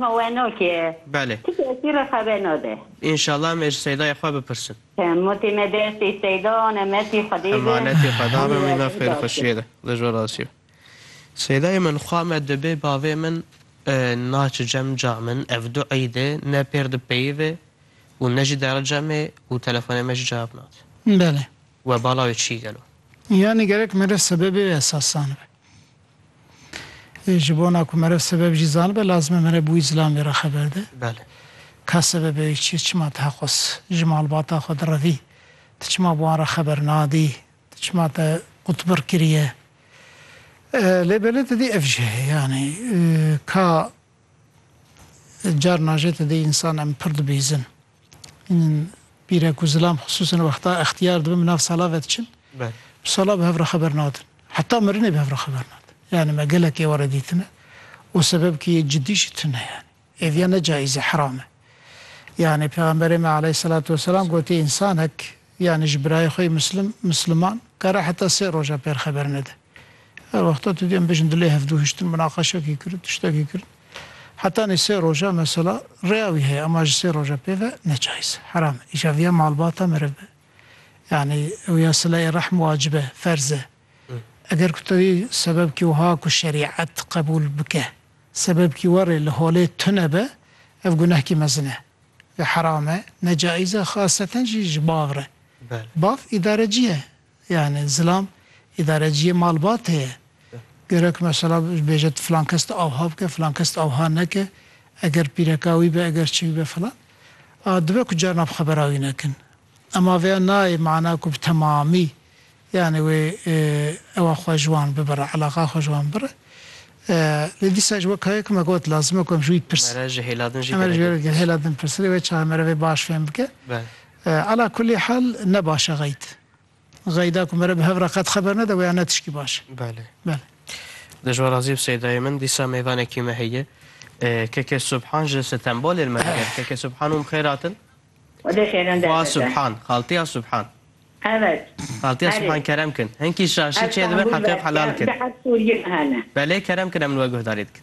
Xeweno ki ye. Belê. Ti kesî re xeweno de. Înşallah em ê ji Seydayê xwe bipirsin. Mûtî me destê Seyda an emetî Xwedê be. Emanetî Xweda be mîna Hemî fêr xweşî ye de li jor asî be. Seydayê min xwa me dibê bavê min naçi cem ca min ev du îdê ne pêr dipeyivê û ne jî dere cemê û telefonê me jî cewab nade. Belê. We bala wê çî gelo. Yanî gerek mere sebebê esasan be. Ji bona ku meriv sebeb jî zanibe lazim e meriv bi wî zilam vê re xeber de. Belê. Ka sebebê wî çi ye, çima ti heqûs ji malbata xwe direvî? Ti çima bi wan re xeber nadî? Ti çima te qutbir kiriye? Lê belê ti dî ev jî heye yanî ka carna jê ti dî însan em pir dibihîzin. Hîn pîre ku zilam xisûsan wexta extiyar dibin bi nav sala ve diçin. Bi sala bi hev re xeber nadin. Heta mirinê bi hev re xeber nadin. Yanî me gelek êware dîtine û sebebkî yê cidî jî tune yanî. Êviya ne cayîz e, heram e. Yanî pêxemberê me aleyhîselatu weselam gotî însanek yanî ji birayê xwe yê mislim, misliman kare heta sê roja pêr xeber nede. Her wexta tu dê em bêjin dilê hevdu hiştin minaqeşekî kirin, tiştekî kirin. Heta nê sê roja mesela rêya wî heye ema ji sê roja pê ve ne cayîz e, heram e. Îja viya malbata meriv be. Yanî ew ya silayê rehm wacib e, ferz e. Eger ku tevî sebebkî wiha ku şerîet qebûl bike, sebebkî we rê li holê tune be, ev gunehkî mezin e. Vê heram e, ne cayîz e, xaseten jî ji bav re. Bav îdarecî ye. Yanî zilam îdareciyê malbatê ye. Gero ki mesela bêje tu filan kes tu awha bike, filan kes tu awha neke, eger pîreka wî be, eger çi wî be filan. A dibe ku carna bi xebera wî nekin. Ema vêya nayê mana ku bi temamî yanî wê ewa xwe ji wan bibire, eleqa xwe ji wan bibire. Lê dîsa ji weka ye ku me got lazim e ku em ji wî pirsin. Em ê ji wê re hêla din pirsin. Rê wê çawa em ê re vê baş fêm bike. Ala kulî hal ne baş e xeyd. Xeyda ku mere bi hev re qet xeber nede weya ne tişkî baş e. Belê. Belê. Dijwa razî bi Seydayê min dîsa mêvanekî me heye. KK Subhan ji Stenbolê li me diger. KK Subhan ûm xêr hatin. Xwedê xêran derve da. Xwa Subhan, xaltiya Subhan. Evet. Xaltiya Subhan kerem kin. Hinkî şaşî çêdibin heqê xw helal kin. Belê kerem kin em li we guhdarî dikin.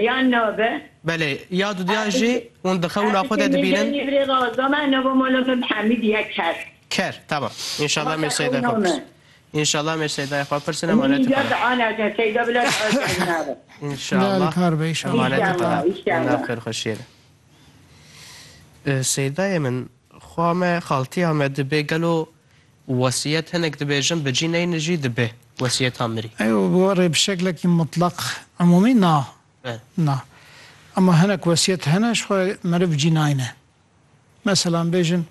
Yan nabe. Belê, ya du diyan jî hûn di xewna xwe de dibînin. Ker, tamam. Înşallah em ê Seyda xwe pirsin. Înşallah em ê Seydayê xwe pirsin emanetê xwe re. Înşallah emanetê xwe re di nav xêrxweşiyê de. Seydayê min, xwa me, xaltiya me dibe gelo Wesiyet hinek dibêjin bi cî neyne jî dibe wesiyeta mirî. Ew bi we re bi şeklekî mutlaq, umûmî na. Na. Ema hinek wesiyet hene ji xwe re meriv cî nayne. Meselan bêjin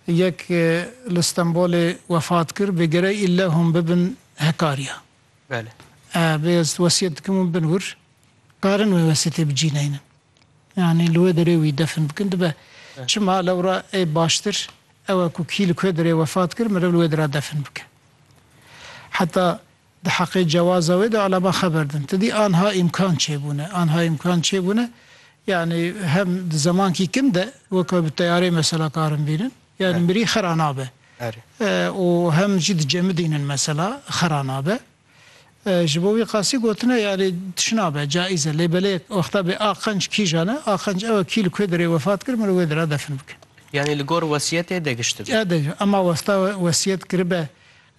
yek li Stenbolê wefat kir bi gerek îlle hûn bibin hekariya. Belê. Bê ez wesiyet dikim hûn bin wir, karin wê wesiyetê bi cî neynin. Yanî li wê derê wî defin bikin dibe. Çima lewra ê baştir Ewa ku kî li Kuedirê wefat kir meriv li wê dira defin bike. Heta di heqê cewaza wê de eleman xeber din. Ti dî anha îmkan çêbûne. Anha îmkan çêbûne yanî hem di zemankî kin de weke bi teyareyê mesela karin bînin yanî mirî xera nabe û hem jî di cemidînin mesela xera nabe. Ji bo wî qasî gotin e yarî tişna be, caiz e. Lê belê wexta bê a qenc kîjan e, a qenc ew e kî li ku derê wefat kir mirov wê dera defin bike. Yanî li gor wesiyetê digişt dibe. Ede jî. Ema wexta wesiyet kiribe,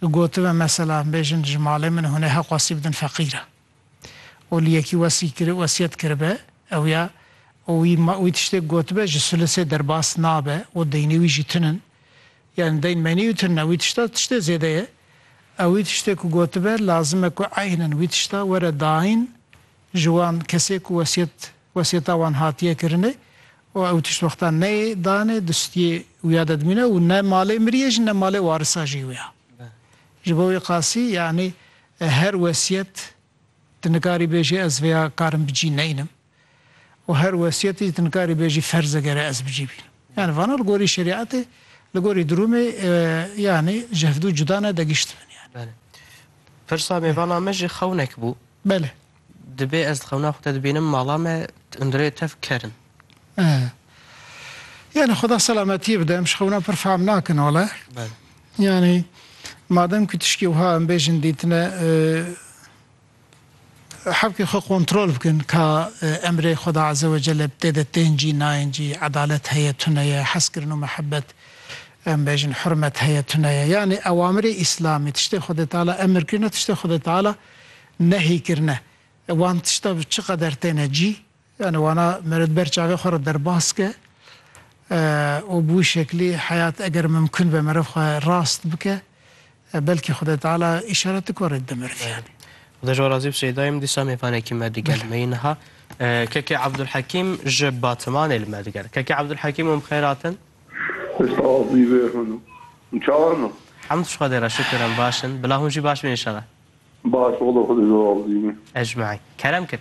gotibe mesela bêjin ji malê min hûn ê heq wesî bidin feqîra û li yekî wesî kir wesiyet kiribe ew ya û wî wî tiştêk gotibe ji sulisê derbas nabe û deynê wî jî tinin, Yanî deyn menî û tirna wî tişta tiştê zêde ye. Ew wî tiştê ku gotibe lazim e ku eynen wî tişta were dayîn ji wan kesê ku wesiyet wesiyeta wan hatiye kirinê û ew tişt wexta neyê danê distiyê wîya de dimîne û ne malê mirî ye jî ne malê warisa jî wîya. Ji bo wî qasî yanî her wesiyet tu nikarî bêjî ez vêya karim bi cî neynim. û her wesiyetê jî tu nikarî bêjî ferz e gere ez bicî bînim. Yanî vana li gorî şerîetê, li gorî dirûmê yanî ji hevdu cuda ne digiştibin yanî. Belê. Pirsa me vana me jî xewnek bû. Belê. Dibê ez di xewna xwe de dibînim mala me hundirê tev ker in. Yanî xuda selametiyê bide em ji xewna pir fehm nakin wale. Belê. Yanî madem ku tişkî wiha em bêjin dîtine Hevkê xwe kontrol bikin ka emrê Xweda Eze Wecelle bi tê de tên cî nayên cî, edalet heye tune ye, hezkirin û mihebet, em bêjin hurmet heye tune ye. Yanî ewamirê îslamî, tiştê Xwedê Teala emir kirine, tiştê Xwedê Teala nehî kirine. Wan tişta bi çi qeder têne cî, Yani wana me re di ber çavê xwe re derbas ke û bi wî şeklî heyat eger mimkun be meriv xwe rast bike belkî Xwedê Teala îşaret dike warê dide meriv yani. Xuda ji we razî bi Seyda yê min dîsa mêvanekî me digel me yî niha Keke Abdulhekîm ji Batimanê li me digel. Keke Abdulhekîm hûn bi xêr hatin. Hêsta wazî vê hûn û hûn çawa ne? Hemd ji Xwedê re şikir em baş in bila hûn jî baş bin înşela. Baş walo Xwedê ji we razî be. Ecmaîn. Kerem kir.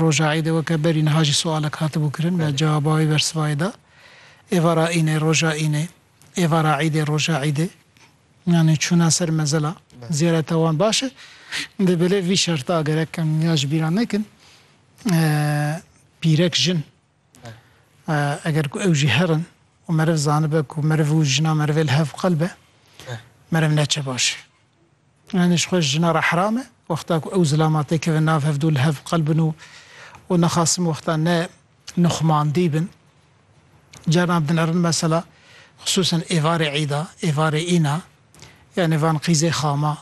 Roja Îdê weke berî niha jî sualek hatibû kirin me cewaba wî ber sivayê da. Êvara Înê, roja Înê, êvara Îdê, roja Îdê yanî çûna ser mezila ziyareta wan baş e. Di bilê vî şerta gerek em ya ji bîra nekin pîrek jin, Eger ku ew jî her in û meriv zanibe ku meriv û jina merivê li hev qel be, meriv ne çi baş e. Yanî ji xwe ji jina re heram e wexta ku ew zilama tê kevin nav hev du li hev qel bin û û nexasim wexta ne nuxmandî bin. Carna dinêrin mesela xisûsan êvarê îda, êvarê îna yanî van qîzê xama.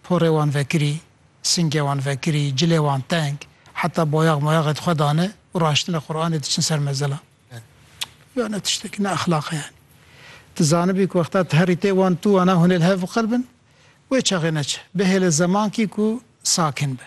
Porê wan vekirî, singê wan vekirî, cilê wan teng, heta boyax moyaxê di xwe de ne û raştine Quranê diçin ser mezila. Ya ne tiştekî, ne exlaq e yanî. Ti zanibî ku wexta ti herî tê wan tu wana hûnê li hev biqilbin, wê çaxê neçe. Bihêle zemankî ku sakin be.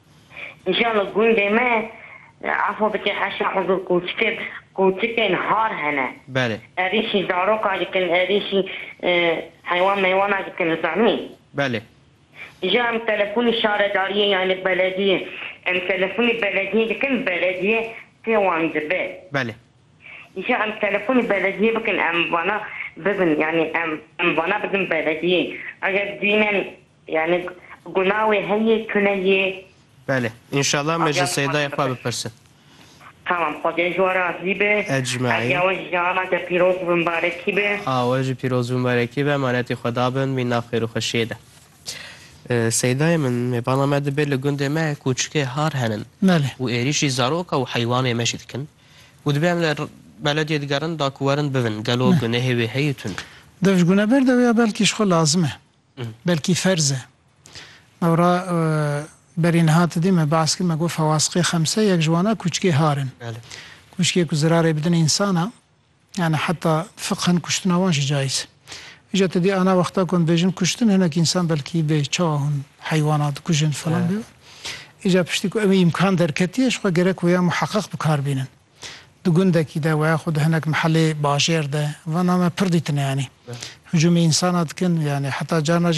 Îja li gundê me efa bike heşa hezir kûçike bi kûçikên har hene. Belê. Erîşî zaroka dikin, erîşî heywan meywana dikin li zanîn. Belê. Îja em telefonî şaredariyê yanî belediyê em telefonî belediyê dikin belediye pê wan dibe. Belê. Îja em telefonî belediyê bikin em vana bibin yanî em em vana bidin belediyê eger bînin Yanî guna wê heye tune yê. Belê. Înşallah me ji Seydayê xwe bipirsin. Tamam Xwedê ji we razî be. Ecmaîn. Eja we ji ana te pîroz bi mibarekî be. A we jî pîroz bi mibarekî be emanetî Xweda bin wî nav xêr û xweşiyê de. Seydayê min mêbana me dibe li gundê me kûçikê har henin û êrîşî zaroka û heywanê me jî dikin û dibe em li belediyê digerin da ku werin bivin gelo gunehê wê heye tune. Dev ji gune berde wê ya belkî ji xwe lazim e. belkî ferz e. Ewra berî niha ti dî me behs kir me got Fawasqê Xemse yek ji wan e kûçikê har in. Kûçikê ku zirarê bidin însan e. Yanî heta fiqhen kuştina wan jî cayîz e. Îja ti dî ana wexta ku em dibêjin kuştin hinek însan belkî bê çawa hûn heywana dikujin filan bêwe. Îja piştî ku ew îmkan derketiye ji xwe gerek wêya muheqeq bikar bînin. Di gundekî de weya xwe di hinek mehelê bajêr de, van name pir dîtine yanî. Hicûmê însan a dikin yanî heta carna